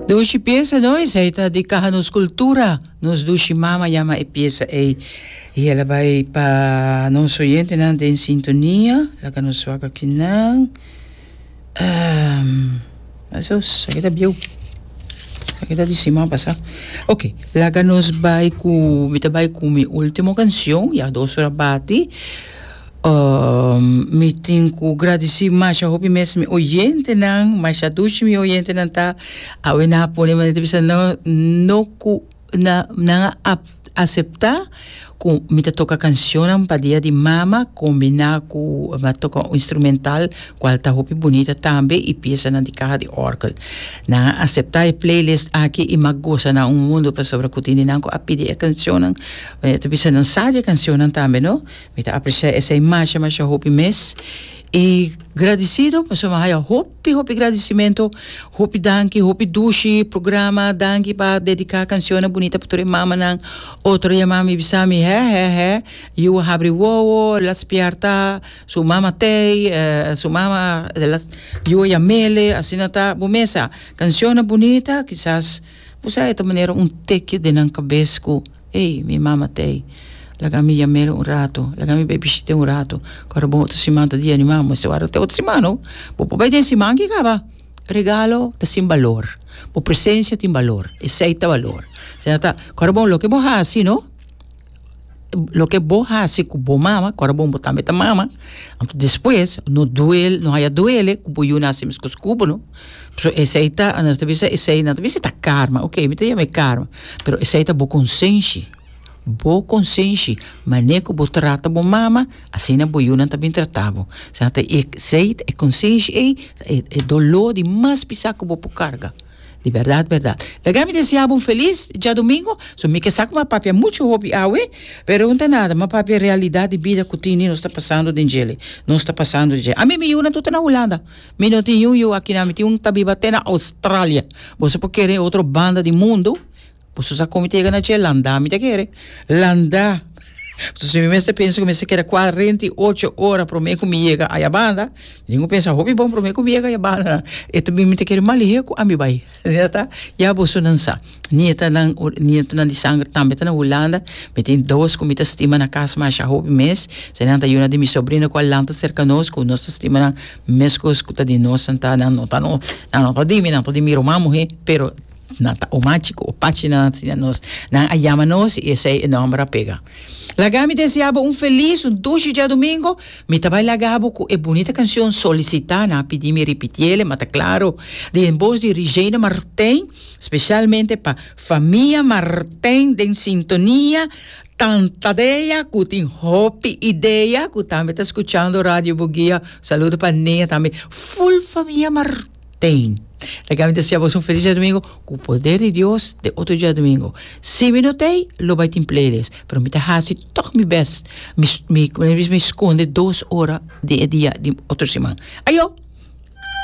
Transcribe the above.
Dushi pieza no, esei ta di Caja Nos Cultura. Nos dushi mama yama e pieza ei. Y el a bai pa nos oyentenan den sintonia. Laga nos wak akinan. Um, asos, aki ta bieu. Aki ta di siman pasá. Ok, laga nos bai cu, mi ta bai cu mi ultimo cancion, ya dos ora bati. mi tin ku gradisí masha hopi mes mi oyentenan, masha dushi mi oyentenan ta. Awe nan a pone manera ta bisa no, no ku na, nan a ap- aseptá ku mi ta toka kanshonnan pa Dia di Mama kombiná ku mi a toka un instrumental kual ta hopi bunita tambe i piesanan di kaha di òrgel. Nan a aseptá e playlist aki i mi a gosa nan un mundu pasobra ku tin di nan ku a pidi e kanshonnan manera ta bisa nan sa di e kanshonnan tambe, no. Mi ta aprecia esei masha masha hopi mes y gradicido pasobra mi haya hopi hopi gradicimento hopi danki hopi dushi programa danki pa dedica cancionnan bunita pa tur e mamanan otro dia mami a bisa mi he he he yu a habri wowo a laat spiarta su mama tei su mama yu a yamele asina ta bo mesa cancionnan bunita kisas bo sabe ta manera un teki den nan cabes ku Ey, mi mama t'ey, laga mi yam'el un rato, laga mi bai bishit'é un rato, ku a rob'on otro siman ta di animal, mas e wòrdu ta otro siman nou, bo por bai den siman ki kaba. Regalo ta sin balor, bo presensia tin balor, esei ta balor. Esei no ta, ku a rob'on loke bo hasi no, loke bo hasi ku bo mama, ku a rob'on bo tambe ta mama, anto despues no duel, no haya duele ku bo yu na hasi e mes kos ku bo no. Pasobra esei ta anos ta bisa esei nan ta bisa ta karma oke mi ta yama e karma pero esei ta bo konsenshi bo konsenshi mane ku bo trata bo mama asina bo yunan ta bin trata bo sa ta e esei e konsenshi ei e dolo di mas pisa ku bo por karga di bèrdat bèrdat laga mi deseá bo un felis diadomingo so mi ke sa kuma a papia muchu hopi awe pero unta nada mi a papia realidat di bida ku tini nos ta pasando den djele nos ta pasando den djele ami mi yunan tur ta na Hulanda. Mi no tin yuyu aki na mi tin un ta biba te na Australia boso por kere otro banda di mundo boso sa con mi ta yega na dje landa mi ta kere landa entonces mi mester pensa cu mi mester keda cuarenta y ocho ora prome cu mi yega ayabanda mi dico pensa hopi bon prome cu mi yega ayabanda e ta bin mi ta kere malihe cu ami bai Reta, Ya boso nan sa, nietanan, nietonan di sangre tambe ta na Hulanda, mi tin dos ku mi ta stima na kas masha hopi mes, esei nan ta yuna di mi sobrino ku a lanta serka nos, ku nos ta stima nan meskos ku ta di nos, nan ta, nan no ta nos, nan no ta di mi, nan ta di mi ruman muhé, pero nan ta o machi ku o pachi na nan sina nos, nan a yama nos i esei e nòmber a pega. Laga mi deseaba un felis, un dushi diadumingu. Mi ta bai laga bo ku e bunita kanshon Solicitana, pidi mi ripitiele ma ta klaro, di den bos di Rijeina Martijn, speshalmente pa famia Martijn den sintonia, tanta dea ku tin hopi idea ku tambe ta skuchando Radio Bugia, saludo pa Nea tambe, ful famia Martijn. Tein. Ta kami ta siña bos un felis djadumingu ku poder di Dios den otro djadumingu. Si mi no ta ei, lo bai tin playlists, pero mi ta hasi tog mi best. Mi mi, kome mi bisa, mi skonde dos ora den e dia di otro siman. Ayo!